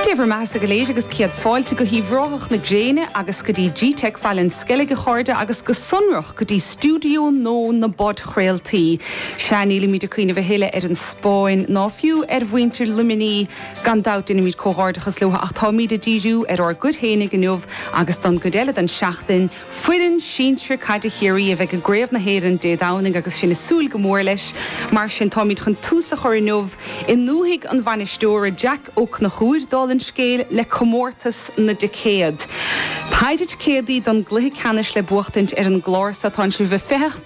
Dé bhur mbeathasa go léir agus céad fáilte go hUíbh Ráthach na Gréine agus go dtí G-Tech Bhaile an Sceilg a chairde agus go sonrach go dtí stiúideo nua na bpodchraoltaí. Sea, nílimid ag cuimhneamh a thuilleadh ar an Spáinn ná fiú ar mhuintir Luimní. Gan dabht déanaimid comhghairdeachas leo ach táimid ag díriú ar ár gcuid féinig inniu agus don gcuid eile don tseachtain. Foireann sinsir caide Chiarraí a bheidh i gCraobh na hÉireann Dé Domhnaigh agus sinn ag súil go mór leis. Mar sin táimid chun tús a chur inniu i ndúthaigh an bhainisteora, Jeaic Ó Cnochúir, dála an scéil, le comórtas na dticéad. péire ticéadaí don gcluiche ceannais le buachtaint ar an gclár so. atánn sibh ag feitheamh?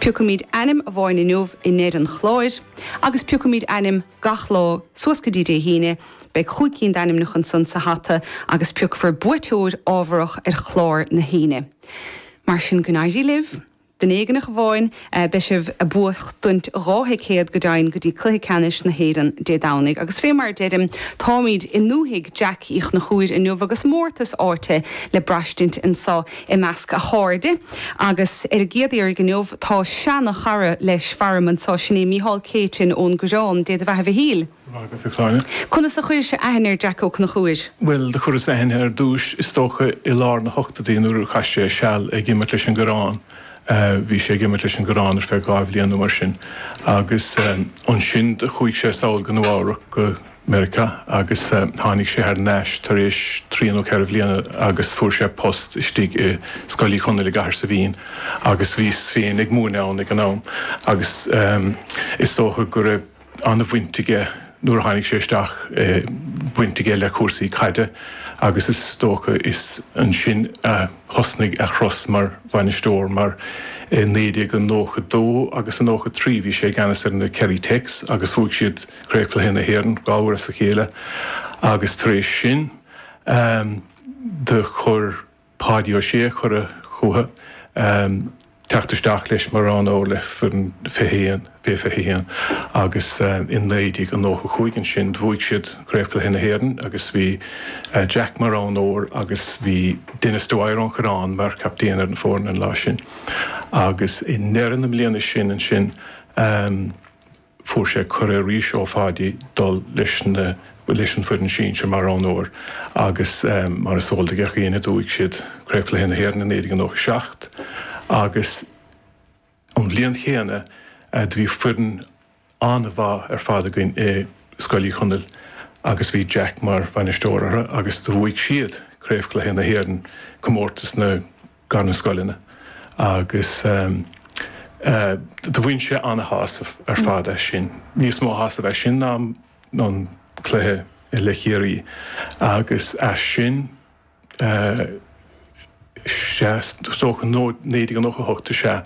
Piocfaimid ainm amháin inniu i ndeire an chláir agus piocfaimid ainm gach lá suas go dtí Dé hAoine, beidh cúig cinn d'ainmneacha ansan sa hata agus piocfar buaiteoir ámharach ar chlár na hAoine. Mar sin go n-éirí libh. Duine éigneach amháin beidh sibh ag buachtaint dhá thicéad go deimhin go dtí cluiche ceannais na hÉireann Dé Domhnaigh agus fé mar a deirim táimid i ndúthaigh Jack Uí Chnochúir inniu agus mórtas áite le braistint anso i measc a chairde, agus ar an gcéad iarraidh inniu, tá seana-chara leis, faram anso, sin é Micheál Céitinn ón gCoireán, Dé do bheatha Mhichíl! Maith agat, a Cháill. Conas a chuiris-se aithne ar Jeaic Ó Cnochúir? Bhuel, do chuireas aithne air ar dtúis, is dócha, i lár na n-ochtóidí, nuair a chaith sé seal ag imirt leis an gCoireán, bhí sé ag imirt leis an gCoireán ar feadh dhá bhliain nó mar sin, agus ansin do chuaigh sé sall go Nua-Eabhrac go, Meiriceá agus tháinig sé thar n-ais tar éis trí nó ceithre bhliana agus fuair sé post istigh i Scoil Uí Chonaill i gCathair Saibhín agus bhíos féin ag múineadh ann ag an am agus is dócha go raibh an-bhaint aige nuair a tháinig sé isteach, baint aige le cúrsaí caide agus is dócha is ansin a thosnaigh a chúrsa mar bhainisteoir mar i 1992 agus i 93 bhí sé i gceannas ar na Kerry Techs agus bhuaigh siad craobhchluiche na hÉireann dhá uair as a chéile agus tar éis sin do chuir Páidí Ó Sé cuireadh chuige teacht isteach leis mar roghnóir le foireann fiche haon, fé 21, agus i 1995 ansin bhuaigh siad craobhchluiche na hÉireann agus bhí Jack mar roghnóir agus bhí Denis Dwyer ón gCoireán mar chaptaen ar an fhoireann an lá sin agus i ndeireadh na bliana sin ansin fuair sé cuireadh arís ó Pháidí dul leis na leis an foireann sinsir mar roghnóir agus mar is eol do gach éinne bhuaigh siad Craobhchluiche na hÉireann i 1997 agus an bhliain chéanna do bhí foireann an-mhaith ar fad againn i Scoil Uí Chonaill agus bhí Jack mar bhainisteoir orthu agus do bhuaigh siad Craobhchluiche na hÉireann, Comórtas na. idir na scoileanna agus do bhain sé an-shásamh ar fad as sin, níos mó sásaimh as sin ná an cluiche le Ciarraí agus ansin, is dócha naoi déag nócha a hocht is ea,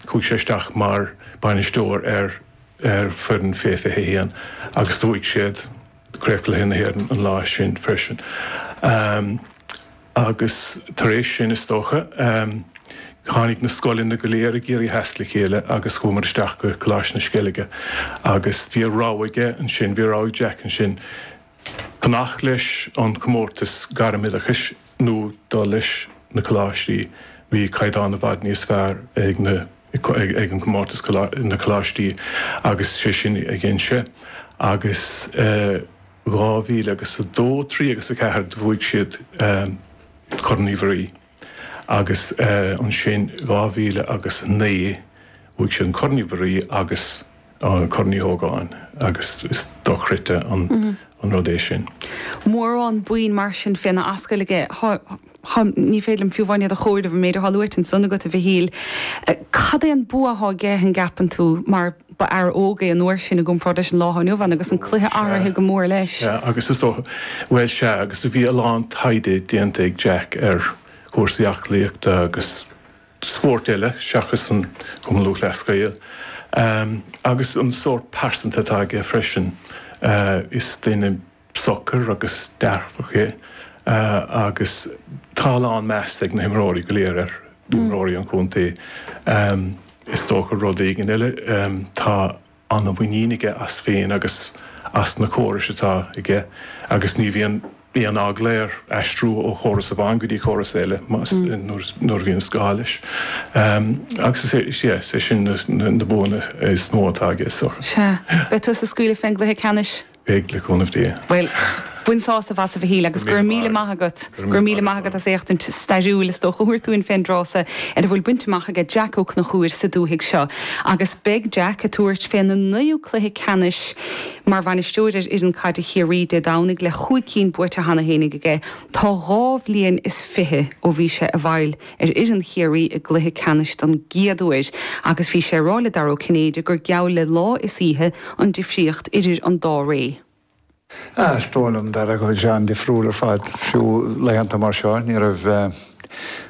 chuaigh sé isteach mar bainisteoir ar foireann Fé fiche a haon agus do bhuaigh siad chríochcluiche na hÉireann an lá sin freisin. Agus tar éis sin, is dócha, tháinig na scoileanna go léir i gCiarraí Theas le chéile agus chuamar isteach go Coláiste na Sceilge agus bhí an rogha aige ansin, bhí an rogha ag Jack ansin, fanacht leis an chomórtas gairm-oideachais nó dul leis na coláistí, bhí caighdeán i bhfad níos fearr ag na. ag an gcomórtas na coláistí agus is é sin an cinneadh agus dhá mhíle agus a dó trí agus a ceathair do bhuaigh siad Corn Uí Mhuirí agus ansin dhá mhíle agus a naoi bhuaigh siad an Corn Uí Mhuirí agus an Corn Uí Ógáin agus is dochreidte an rud é sin. Mórán bonn mar sin féna ascaill aige. Ní féidir liom fiú amháin iad a chomhaireamh, an méid atá luaite ansan agat, a Mhichíl. Cad é an bua atá aige, an gceapann tú, mar ba fhear óg é an uair sin i gcomparáid leis an lá atá inniu ann agus an cluiche athraithe go mór leis? Sea, agus is dócha, bhuel, sea, agus bhí a lán taighde déanta ag Jack ar chúrsaí aclaíochta agus, spórt eile seachas an Cumann Lúthchleas Gael, agus an sórt pearsantacht atá aige freisin. Is duine socair agus dearfach é agus tá a lán measa ag na himreoirí go léir air, imreoirí an chontae is dócha. Rud éigin eile, tá an-mhuinín aige as féin agus as na córais atá aige agus ní bhíonn aon eagla air aistriú ó chóras amháin go dtí córas eile nuair a bhíonn sé gá leis. Agus is é sin na buanna is mó atá aige. Sea. Beidh tusa ag scaoileadh fén gcluiche ceannais. Beidh, le cúnamh Dé. Bhuel, bain sásamh as, a Mhichíl, agus go raibh míle maith agat. Go raibh míle maith agat as. Féachaint stairiúil, is dócha. á thabhairt dúinn féin i dtrátha seo ar a bhfuil bainte amach aige Jack Ó Conchúir sa dúthaigh seo, agus beidh Jack ag tabhairt féna naoú cluiche ceannais mar bhainisteoir ar fhoireann caide Chiarraí Dé Domhnaigh le chúig cinn buaite cheana féinig aige. Tá dhá bhliain is fiche ó bhí sé i bhfeighil. ar fhoireann Chiarraí i gcluiche ceannais don gcéad uair agus bhí sé ag rá le Dara Ó Cinnéide gur geall le lá is oíche an difríocht idir an dá ré. Ah, is dóigh liom, Dara, go bhfuil sé an-difriúil ar fad, fiú laethanta mar seo. Ní raibh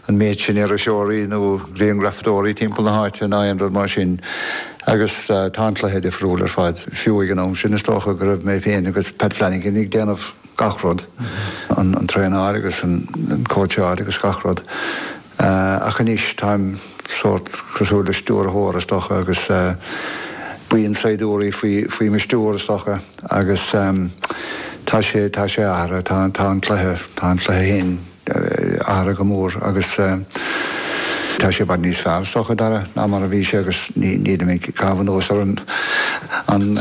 an méid sin iriseoirí nó griangrafadóirí timpeall na háite ná aon rud mar sin agus tá an cluiche difriúil ar fad. Fiú ag an am sin, is dócha go raibh mé féin agus Pat Flanagan ag déanamh. gach rud, an traenáil agus an cóitseáil agus gach rud. Ach anois táim sórt cosúil le stiúrthóir, is dócha, agus buíon saighdiúirí faoi mo stiúir, is dócha, agus tá sé, tá sé athraithe, tá an cluiche, tá an cluiche féin, Athraithe go mór agus tá sé i bhfad níos fearr, is dócha, Dara, ná mar a bhí sé agus nílim ag caitheamh anuas ar an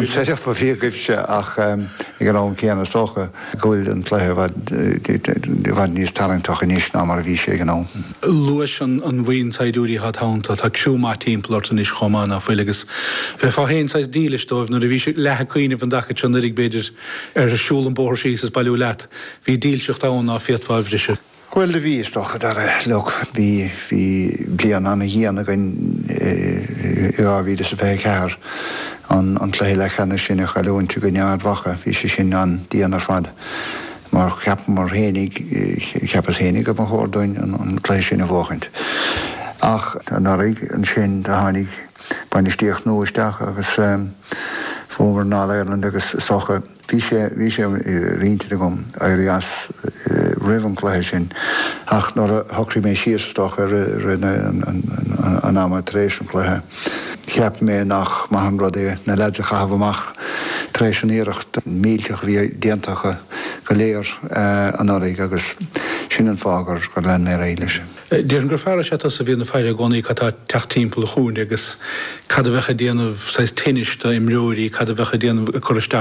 set-up a bhí agaibhse ach ag an am céanna is dócha go bhfuil an cluiche i bhfad níos tarraingteach anois ná mar a bhí sé ag an am. Luais an bhuíon saighdiúirí atá id theannta, tá criú maith timpeall ort anois chomh maith ná fuil agus bheifeá féin saghas dílis dóibh. Nuair a bhís leath ag cuimhneamh an dtaca seo anuiridh, b'fhéidir, ar siúl an bóthar síos is bailiú leat, Bhí dílseacht ann ná féadfá a bhriseadh. Bhuel, do bhí, is dócha. Dara, like, bhí, bhí bliain an-dhian againn i dhá mhíle is a fiche ceathair, an, an cluiche leathcheannais sin i chailliúint i gcoinne Ard Mhacha, bhí sé sin an-dian ar fad mar cheapamar fhéinig, cheapas fhéinig go mba chóir dúinn an, an cluiche sin a bhuachaint. Ach, anuraidh, ansin, do tháinig bainistíocht nua isteach agus bhuamar an All-Ireland agus is dócha, Bhí sé, bhí sé ar intinn agam éirí as roimh an gcluiche sin ach nuair a shocraigh mé síos, is dócha i rith an ama tar éis an chluiche, cheap mé nach maith an rud é na leaids a chaitheamh amach tar éis an iarracht mhillteach a bhí déanta acu go léir anuraidh agus sin an fáth gur lean mé ar aghaidh leis. Déarfainn gur fear is ea tusa a bhíonn ag faire i gcónaí cad tá ag teacht timpeall an chúinne agus cad a bheadh ag déanamh saghas tinnis d'imreoirí, cad a bheadh ag déanamh, ag cur isteach